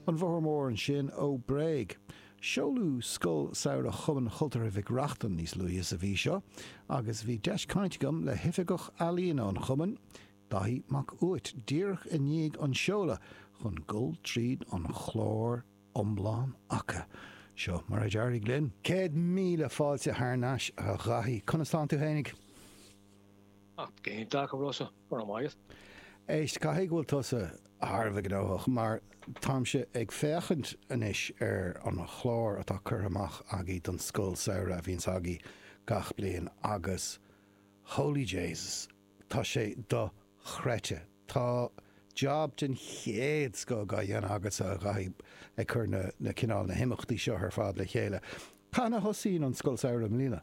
An Bóthar Mór ansin ó Bréag. Seoladh Scoil Samhraidh Chumann Chultúrtha Mhic Reachtain níos luaithe sa mhí seo agus bhí deis cainte agam le hOifigeach Ealaíona an Chumainn, Daithí Mac Uait, díreach i ndiaidh an tseolta chun dul tríd an chlár iomlán acu. Seo mar a d'éirigh linn. Céad míle fáilte thar n-ais, a Dhaithí. Conas tánn tú fhéinig? Ach go hiontach, a Rossa. where am I? Is. Éist, caithfidh go bhfuil tusa thar a bheith gnóthach mar táimse ag féachaint anois ar an chlár atá curtha amach agaibh don scoil samhraidh a bhíonns agaibh gach bliain agus Holy Jasus, tá sé dochreidte. Tá job den chéad scoth á dhéanamh agatsa a Dhaithí ag cur na, na, cineál, na himeachtaí seo ar fad le chéile. Cathain a thosaíonn an scoil samhraidh i mbliana?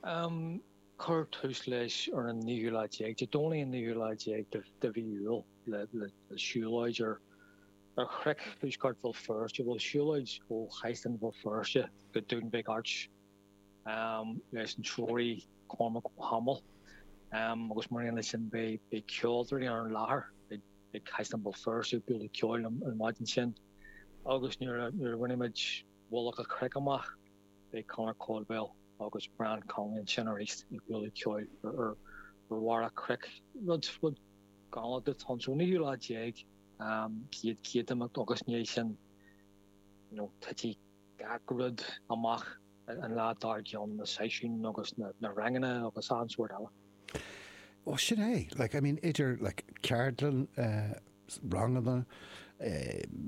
Um cuirfear tús leis ar an naoú lá déag, Dé Domhnaigh an naoú lá déag de mhí Iúil, le siúlóid ar chnoic thuaisceart Bhéal Feirste, bhuel siúlóid ó Chaisleán Bhéal Feirste go Dún Mhic Airt leis an treoraí Cormac Ó hAdhmaill agus mar aon leis sin beidh ceoltóirí ar an láthair ag Caisleán Bhéal Feirste ag bualadh ceoil an mhaidin sin agus nuair a bhainfimid mullach an chnoic amach. Beidh Conor Caldwell agus Brian Conlon sin arís ag bualadh ceoil ar bharr an chnoic. Rud, rud. Go dtí an, so an naoú lá déag an chéad imeacht agus ina dhiaidh sin titfidh gach rud amach an lá dár gcionn, na seisiúin agus na ranganna agus an sórt eile. Bhuel, sin é. Like, I mean, idir like ceardlann eh, ranganna,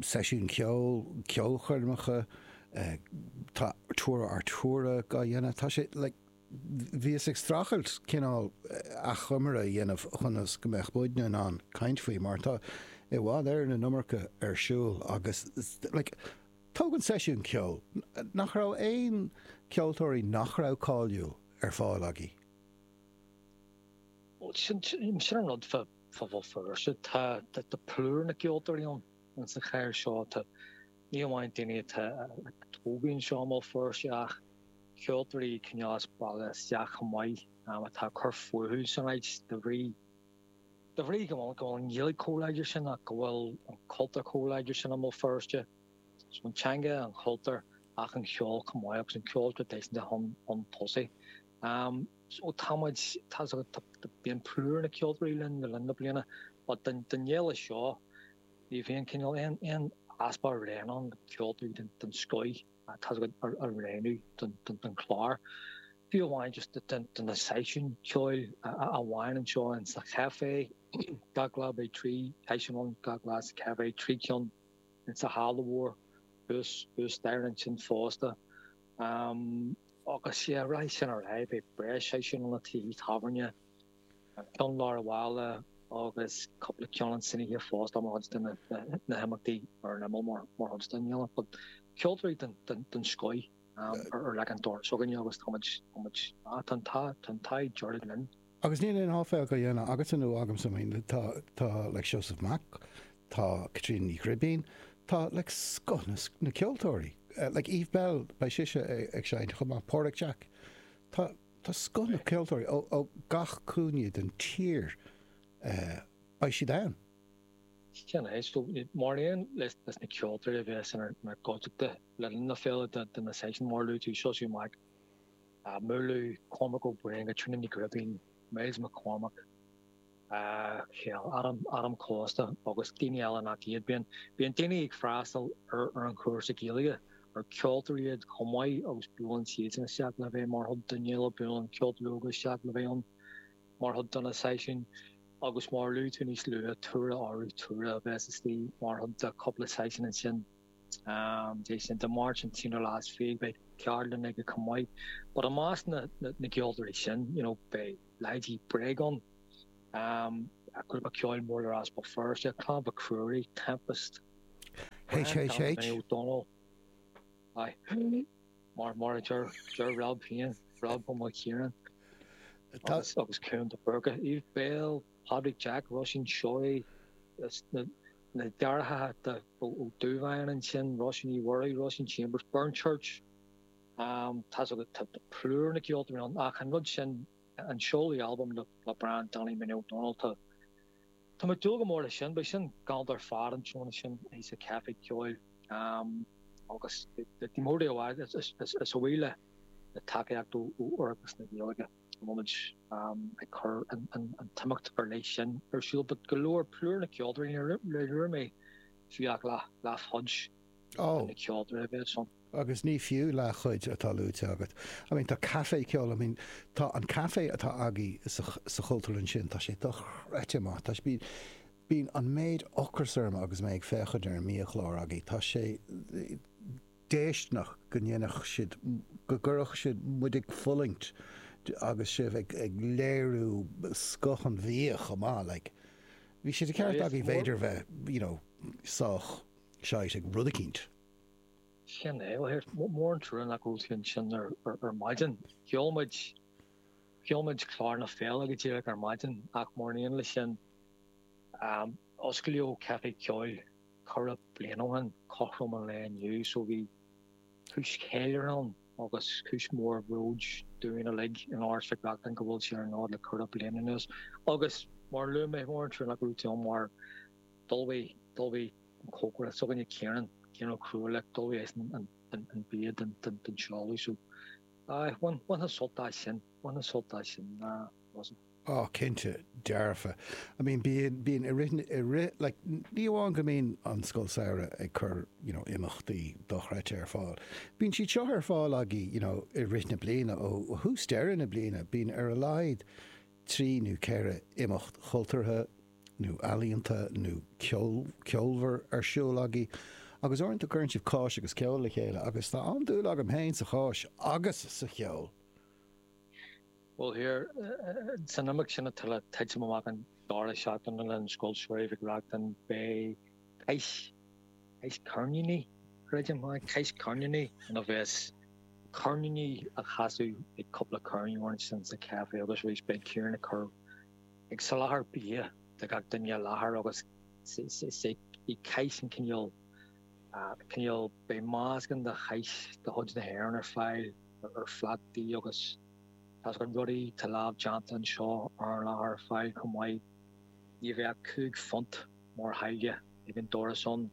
seisiúin cheoil, ceolchoirmeacha, tá tour ar thuras á dhéanamh, tá sé like bhíos ag streachailt cineál achoimre a dhéanamh ionas go mbeadh muidne in ann caint faoi mar tá i bhfad Éirinn an iomarca ar siúl agus like tóg na seisiúin cheoil, nach raibh aon ceoltóirí nach raibh cáiliúil ar fáil agaibh? Sin an rud. phobal Feirste. Tá plúr na gceoltóirí ann sa chathair seo, ní amháin daoine atá tógtha anseo i mBéal Feirste ach ceoltóirí cineál as baile isteach chomh maith atá ag cur fúthu san áit de bhrí de bhrí go bhfuil go bhfuil an Ghaeilge chomh láidir sin ach go bhfuil an cultúr chomh láidir sin i mBéal Feirste. So an teanga, an cultúr ach an ceol chomh maith agus an ceol traidisiúnta chun tosaigh. Am, So tá muid, tá, so tá, bíonn plúr na gceoltóirí linn le linn na bliana but don, don fhéile seo ní bhíonn cineál aon, aon easpa orainn ceoltóirí den, den scoith tá's agat, a roghnú don, don, don chlár. Fiú amháin just do, do, do na seisiúin ceoil a, a, a bhíonn anseo in sa chafé gach lá beidh trí seisiún ann gach lá sa café trí ceann in sa halla mhór thuas, thuas staighre ansin fosta. am agus sé a raibh sin ar aghaidh beidh breis seisiúin sna tithe tábhairne, ceann i lár an bhaile agus cúpla ceann ann san oíche fosta mar chuid de na himeachtaí ar an imeall mar mar chuid den fhéile. But ceoltóirí den den scoith ar ar leac an dorais againne agus táimid táimid ah tá an tá tá an t-ádh dearg linn. Agus níl aon áiféal dá dhéanamh agatsa-nó agamsa, I mean, tá, tá like Seosamh Mac, tá Caitríona Ní Ghribín, tá like scoth na, na ceoltóirí, like Eve Belle, beidh sise ag seinnt chomh maith, Páraic Jack, tá, tá scoth na ceoltóirí ó, ó gach cúinne den tír, eh, beidh siad ann. Sin é, so mar aon leis, leis na ceoltóirí a bheas inár, inár gcuideachta le linn na féile, de, de na seisiúin mar a luaigh tú, Seosamh Mac, á múlú, Cormac Ó Briain, Tríona Ní Ghribín, Myles McCormack, Micheál Adam, Adam Costa agus daoine eile nach iad. Bíonn daoine ag freastal ar an chúrsa Gaeilge ar ceoltóirí iad chomh maith agus buaileann siadsan isteach le bheith mar chuid den fhéile, buaileann ceoltóirí óga isteach le bheith ann mar chuid de na seisiúin agus mar a luaigh tú níos luaithe, Tura Arutura a bheas istigh mar chuid de chúpla seisiún ansin. É sin Dé Máirt an t-aonú lá is fiche beidh ceardlann aige chomh maith. But i measc na gceoltóirí sin you know beidh leithéidí Bréag ann, grúpa ceoil mór le rá as Béal Feirste, Clann Mhic Ruairí, Tempest, Grand Gallery, Naomh H.H. Dónall, aye, mar mar a deir deir Rob féin, Rob Ó Maoilchiaráin, agus agus Cuan de Búrca, Eve Belle, Pádraig Jack, Róisín Seoighe, na deartháireacha Ó Dubháin ansin, Róisín Ní Mhuirí, Róisín Chambers, Burnchurch, tá's agat, tá plúr na gceoltóirí ann ach an rud sin, an seoladh albaim le Brian Danny Minnie Ó Domhnaill, tá mé ag dúil go mór leis sin, beidh sin galánta ar fad an tráthnóna sin sa Chaife Ceoil agus ní mór di a bheith, is a bhuí le tacaíocht ó Oireachtas na Gaeilge. Táimid ag cur an t-imeacht ar leith sin ar siúl, but go leor, plúr na gceoltóirí, níor luaigh mé fiú ach leathchuid de na ceoltóirí a bheas ansin. Agus ní fiú leathchuid atá luaite agat. I mean, tá caife ceoil, I mean, tá an caife atá agaibh sa Chultúrlann sin, tá sé dochreidte maith. Tá sé, bíonn an méid ocras orm agus mé ag féachaint ar an mbiachlár agaibh, tá sé, déisteanach go ndéanfadh siad, go gcuirfeadh siad muid ag fulaingt agus sibh ag léiriú scoth an bhia chomh maith. Like bhí sé de cheart agaibh b'fhéidir bheith you know sách shite ag rud eicínt. Sin é. Well here, mór an trua nach raibh tú ansin ar maidin. Sheol muid, sheol muid clár na féile go díreach ar maidin ach mar aon leis sin osclaíodh Caifé Ceoil Ceithre bliana ó shin, cothrom an lae inniu, so bhí cúis cheiliúrtha ann agus cúis mhór bhróid dúinn uilig in Áras Mhic Reachtain go bhfuil sé ar an fhód le ceithre bliana anuas agus mar a luaigh mé mór an trua nach raibh tú ann mar d'ullmhaigh, d'ullmhaigh an cócaire s'againne Ciarán, Ciarán Ó Cruadhlaoich, like, d'ullmhaigh eisean an, an, an bia don, don, don seoladh so aye, bhain, bhainfeá sult as sin, bhainfeá sult as sin, nah, wasn't. á cinnte dearfa. I mean bíonn bíonn i rith i rith like ní amháin go mbíonn an scoil samhraidh ag cur you know imeachtaí dochreidte ar fáil bíonn siad seo ar fáil agaí you know i rith na bliana ó thús deireadh na bliana bíonn ar a laghad trí nó ceithre imeacht chultúrtha nó ealaíonta nó ceol ceolmhar ar siúl agaí agus uaireanta cuireann sibh cáis agus ceol le chéile agus tá an-dúil agam féin sa cháis agus sa cheol. Ó thaobh san imeacht sin atá le titim amach an deireadh seachtaine den Scoil Samhraidh Mhic Reachtain beidh Cáis Cáis Ceirníní creidim yeah Cáis Ceirníní ina bheas ceirníní á chasadh ag cúpla ceirneoir ansin sa caifé agus arís beidh Ciarán ag cur ag soláthar bia do gach duine i láthair agus sé í Cáis an cineál cineál beidh meascán de Cháis de chuid na hÉireann ar fáil ar phlátaí agus tá a fhios agat rudaí atá lámhdhéanta anseo ar an láthair ar fáil chomh maith. Ní bheidh ach cúig phunt mar tháille ag an doras ann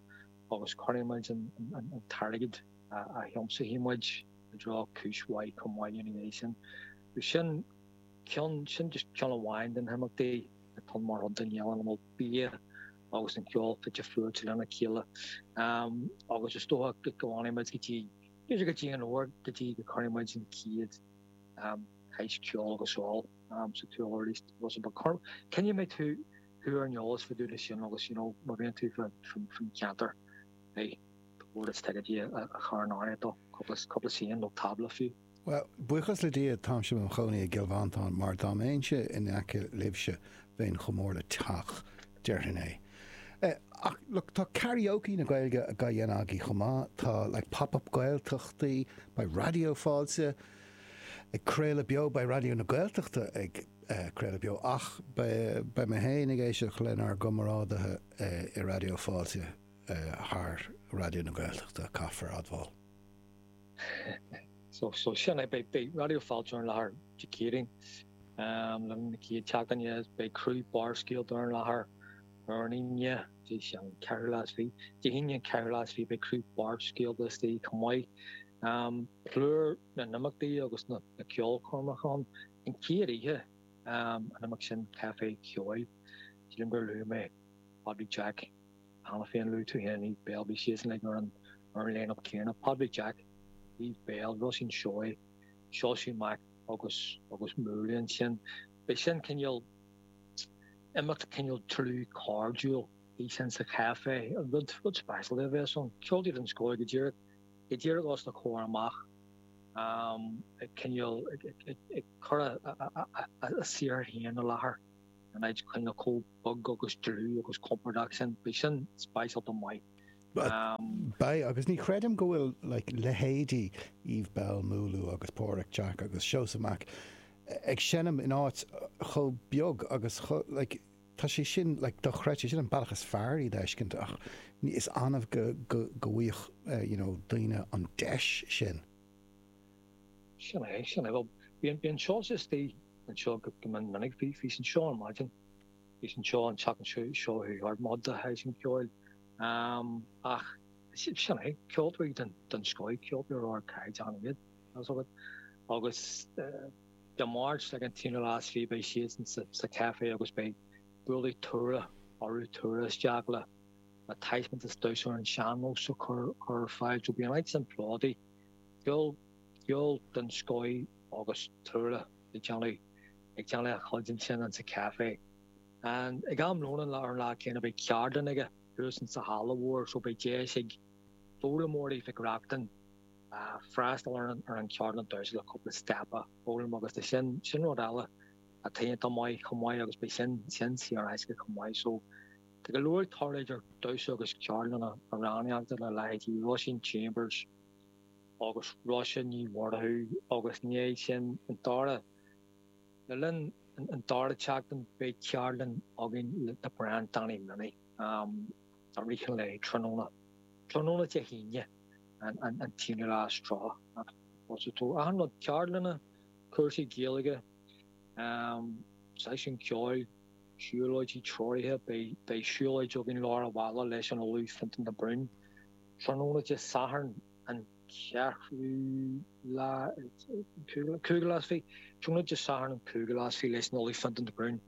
agus cuirfidh muid an t-airgead a thiomsóidh muid i dtreo cúis mhaith chomh maith ina dhiaidh sin. Sin ceann, sin just ceann amháin de na himeachtaí atá mar chuid den fhéile ina bhfuil bia agus an ceol fite fuaite lena chéile agus is dócha go bhfanfaidh muid go dtí Bíodh sé go dtí an uair go dtí go gcuirfidh muid an chéad shaghas ceoil go seol sa tuairliosta, bhuel so bí cinnte go mbeidh tú tú ar an eolas fá dtaobh de sin agus you know má bhíonn tú fán cheantar beidh do bhord is ticéid a chur in áirithe duit cúpla suíochán nó tábla fiú. Bhuel, buíochas le Dia táimse i mo chónaí i gCill Mhantáin mar dá mbeinnse in aice libhse bheinn chomh mór le teach, déarfainn é. Ach look, tá karaoke na Gaeilge á dhéanamh agaibh chomh maith, tá like Pop Up Gaeltachtaí, beidh Raidió Fáilte ag craoladh beo, beidh Raidió na Gaeltachta ag craoladh beo ach beidh mé féin ag éisteacht lenár gcomrádaithe i Raidió Fáilte thar Raidió na Gaeltachta, caithfear admháil. So sin é, beidh Raidió Fáilte ar an láthair Dé Céadaoin lár na chéad seachtaine, beidh criú Barrscéalta ar an láthair ar an Aoine, Dé Sathairn, an ceathrú lá is fiche, Dé hAoine, an ceathrú lá is fiche, beidh criú Barrscéalta istigh chomh maith, plúr na n-imeachtaí agus na ceolchoirmeacha ann, an chéad oíche an imeacht sin, Café Ceoil, sílim gur luaigh mé Pádraig Jack. cheana féin. Luaigh tú féin Eve Belle, beidh siadsan uilig ar an lineup céanna, Pádraig Jack, Eve Belle, Róisín Seoighe, Seosaí Mac agus agus Múlú ansin. Beidh sin cineál imeacht cineál dlúth cairdiúil, beidh sin sa chaifé, rud rud speisialta a bheas ann. Ceoltóirí den scoth go díreach, go díreach os do chomhair amach, ag cineál ag ag ag ag cur a a a a saothar féin i láthair in áit cineál chomh. bog agus dlúth agus compordach sin, beidh sin speisialta maith. Beidh, agus ní chreidim go bhfuil like leithéidí Eve Belle Múlú agus Páraic Jack agus Seosaí Mac ag seinm in áit chomh beag agus chomh like tá sé sin like dochreidte, sin an bealach is fearr iad a fheiscint ach ní, is annamh go, go, go bhfaigheadh eh, you know, daoine an deis sin. Sin é, sin é, bhuel, bíonn, bíonn Seosaí istigh anseo go, go mion minic, bhí, bhí sé anseo ar maidin. Bhí sé anseo an tseachtain seo a chuaigh thart mbád de thaitin ceoil. Ach sin é, ceoltóirí den scoth, ceoltóirí ardchaighdeáin iad, tá's agat. Agus Dé Máirt ag an t-aonú lá is fiche beidh siadsan sa Café agus beidh buailfidh Tura Arutura isteach le taispeántas damhsa ar an sean-nós a chur ar fáil. So beidh an áit sin plódaithe, ceol den scoth agus Tura ag déanamh. ag déanamh a chuid ansin ins an café. An, ag am lóin an lá, ar an lá céanna beidh ceardlann aige thuas ins sa halla mhór so beidh deis ag foghlaimeoirí Mhic Reachtain freastal ar an, ar an cheardlann thuas le cúpla step a fhoghlaim agus sin, sin rud eile atá iontach maith chomh maith agus beidh sin, sin saor in aisce chomh maith so tá go leor ag tarlú idir damhsa agus ceardlanna amhránaíochta le leithéidí Róisín Chambers, agus Róise Ní Mhurchú agus beidh sin an dara. Le linn an dara tseachtain beidh ceardlann againn le Brian Danny Minnie ar oíche lae tráthnóna, tráthnóna Dé hAoine an t-aonú lá is tríocha. Achan rud, ceardlanna, cúrsaí Gaeilge, seisiúin ceoil, siúlóidí treoraithe, beidh siúlóid againn lár an bhaile leis an Ollamh Fionntán de Brún. Tráthnóna Dé Sathairn an 4ú, cúigiú lá is fiche, tráthnóna Dé Sathairn an cúigiú lá is fiche leis an Ollamh Fionntán de Brún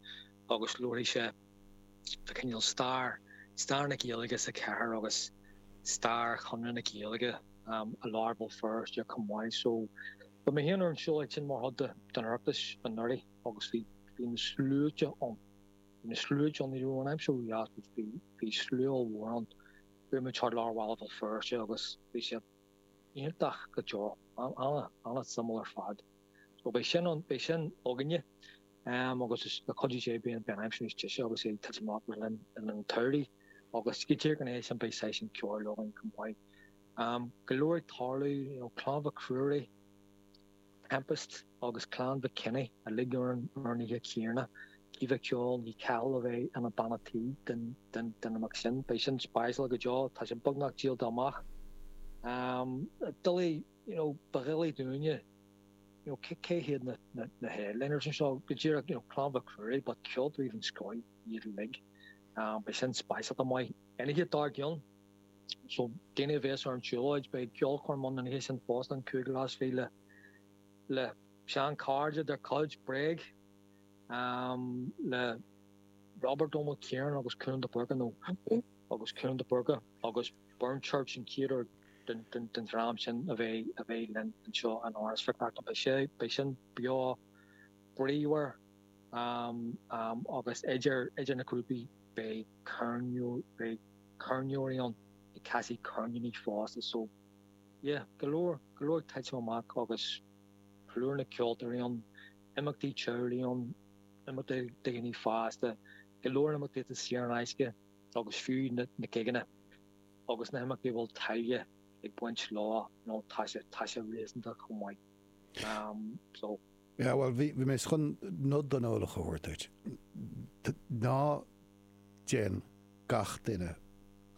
agus labharfaidh sé fa cineál stair, stair na Gaeilge sa chathair agus stair Chonradh na Gaeilge i lár Bhéal Feirste chomh maith. So bhí mé féin ar an tsiúlóid sin mar chuid den Oireachtas anuraidh agus bhí na sluaite ann, bhí na sluaite ann, ní raibh an aimsir ró-dheas ach bhí slua ollmhór ann. Chuaigh muid thart lár bhaile Bhéal Feirste agus bhí sé iontach go deo, an-suimiúil ar fad. So beidh sin ann, beidh sin againne agus le cuidiú Dé beidh an aimsir níos deise agus é ag titim amach le linn an tsamhraidh agus go díreach ina dhiaidh sin beidh seisiún ceoil againn chomh maith. Go leor ag tarlú, you know, Clann Mhic Ruairí, Tempest agus Clann Mhic Cionnaith uilig orainn urnaithe Tiarna Caoimhe ceol, ní Cathal a bheidh ina banna tí don imeacht sin, beidh sin speisialta go deo, tá sé beagnach díolta amach. Doiligh, you know, ba dhoiligh dúinne, you know, cé hiad na headliners anseo, go díreach, you know, Clann Mhic Ruairí but ceoltóirí den scoth iad uilig, beidh sin speisialta maith. An oíche dár gcionn. So, daoine a bhéas ar an tsiúlóid, beidh ceolchoirm ann an oíche sin fosta, an cúigiú lá is fiche le le seanchairde dár gcuid Bréag le Robert Ó Maoilchiaráin agus Cuan de Búrca, nó agus Cuan de Búrca agus Burnchurch an chéad uair don don dream sin a bheith a bheith linn anseo in Áras Mhic Reachtain. Beidh sé beidh sin beo bríomhar agus idir idir na grúpaí beidh ceirneoir beidh ceirneoirí ann ag casadh ceirníní fosta so yeah, go leor, go leor ag titim amach agus plúr na gceoltóirí ann, imeachtaí teaghlaigh ann, imeachtaí do dhaoine fásta, go leor imeachtaí atá saor in aisce agus fiú na gigeanna agus na himeachtaí a bhfuil táille ag baint leo, you know, tá sé, tá sé réasúnta chomh maith. Um, so. Yeah, bhuel, bhí mé chun nod don eolach a thabhairt duit. Ná déan gach duine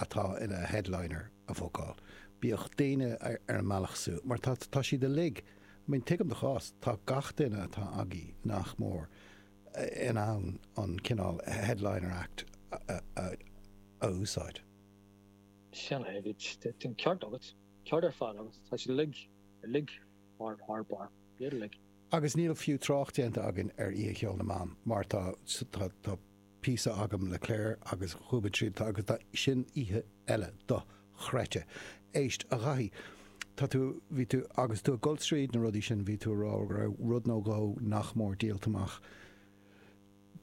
atá ina headliner a bhookáil. Bíodh daoine ar an mbealach suas, mar tá siad uilig, I mean, tuigim do chás, tá gach duine atá agaibh, nach mór, in ann an cineál headliner act a úsáid. Sin é, bhí an ceart agat. Ceart ar fad agat. Tá siad uilig, uilig Barr Barr Barr Bídealaigh. Agus níl fiú trácht déanta againn ar Oíche Cheoil na mBan mar tá tá píosa agam le Claire agus dhúbaint siad tá agus tá sin oíche eile dochreidte. Éist, a Dhaithí, tá tú bhí tú agus tú ag dul tríd na rudaí sin bhí tú a rá go raibh rud nó dhó nach mór díolta amach.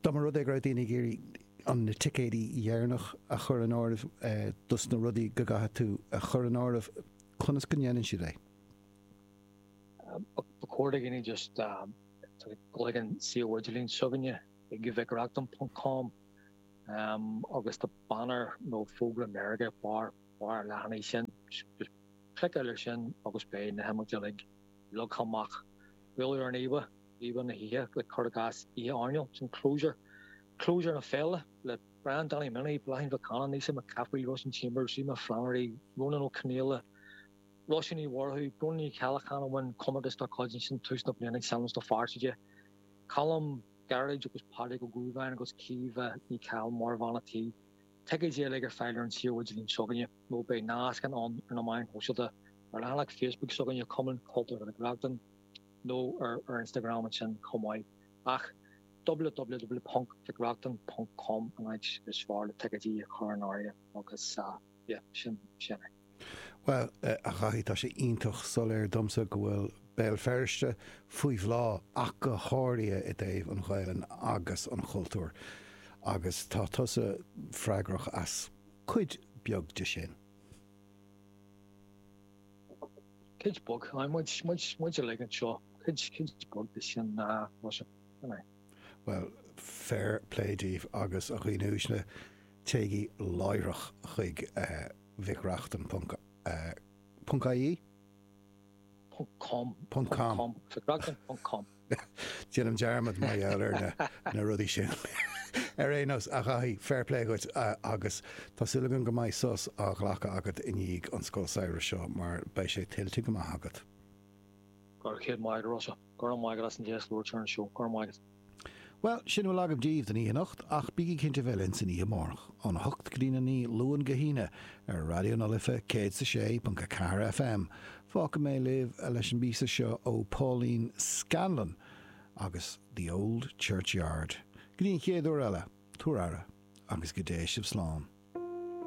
Dá mba rud é go raibh daoine ag iarraidh an na ticéidí dheireanach a chur in áireamh dos na rudaí go gcaithfidh tú a chur in áireamh, conas go ndéanann siad é? Ba chóir do dhaoine just gabháil chuig an suíomh idirlín s'againne ag mhicreachtain.com agus tá banner nó fógra meirge ar barr an leathanaigh sin. Just cliceáil ar sin agus beidh na himeachtaí uilig leagtha amach. Buail ar an íomhá, íomhá na hoíche le cur i gcás Oíche Airneáil sin, clabhsúr, clabhsúr na féile le Brian Danny Minnie, Bláithín Mhic Cana, Naoise Mac Cathmhaoil, Róisín Chambers, Rima Flannery, Rónán Ó Conaola, Róise Ní Mhurchú, Bróna Ní Cheallacháin a bhain comórtas dár gcuid ansin tús na bliana ag Sean-nós na Fearsaide, Colm, Gearóid agus Pádraig Ó Dubháin agus Caoimhe Ní Chathail mar Bhean an Tí. Ticéidí uilig ar fáil ar an suíomh idirlín s'againne nó beidh nascanna ar na meáin shóisialta, ar leathanach Facebook s'againne Cumann Cultúrtha Mhic Reachtain nó ar ar Instagram ansin chomh maith ach www.mhicreachtain.com an áit is fearr le ticéidí a chur in áirithe agus. yeah, sin, sin é. Bhuel, eh, a Dhaithí, tá sé iontach soiléir domsa go bhfuil Béal Feirste faoi bhláth ach go háirithe i dtaobh an Ghaelainn agus an chultúir agus tá tusa freagrach as cuid beag de sin. Cuid beag, muid, muid, muid uilig anseo, cuid, cuid beag de sin ná, uh, Bhuel, fair play daoibh agus a dhaoine uaisle, téigí láithreach chuig Mhic Reachtain ponc. ie? Ponc com. Ponc com. Mhic Reachtain ponc com. Déanaim dearmad mar gheall ar na rudaí sin. Ar aon nós, a Dhaithí, fair play dhuit agus tá súil agam go mbeidh sos á ghlacadh agat i ndiaidh an scoil samhraidh seo mar beidh sé tuillte go maith agat. Go raibh céad maith agat, Rossa. Go raibh maith agat as an deis labhairt ar an seó. Go raibh maith agat. Bhuel, sin a bhfuil agam díbh don oíche anocht, ach bígí cinnte a bheith linn san oíche amárach, ón 8 go dtí'n 9, Luan go hAoine, ar Raidió na Life 106.4 FM. Fágfaidh mé libh leis an bpíosa seo ó Pauline Scanlon agus The Old Churchyard. Go dtí an chéad uair eile, tabhair aire, agus go dté sibh slán.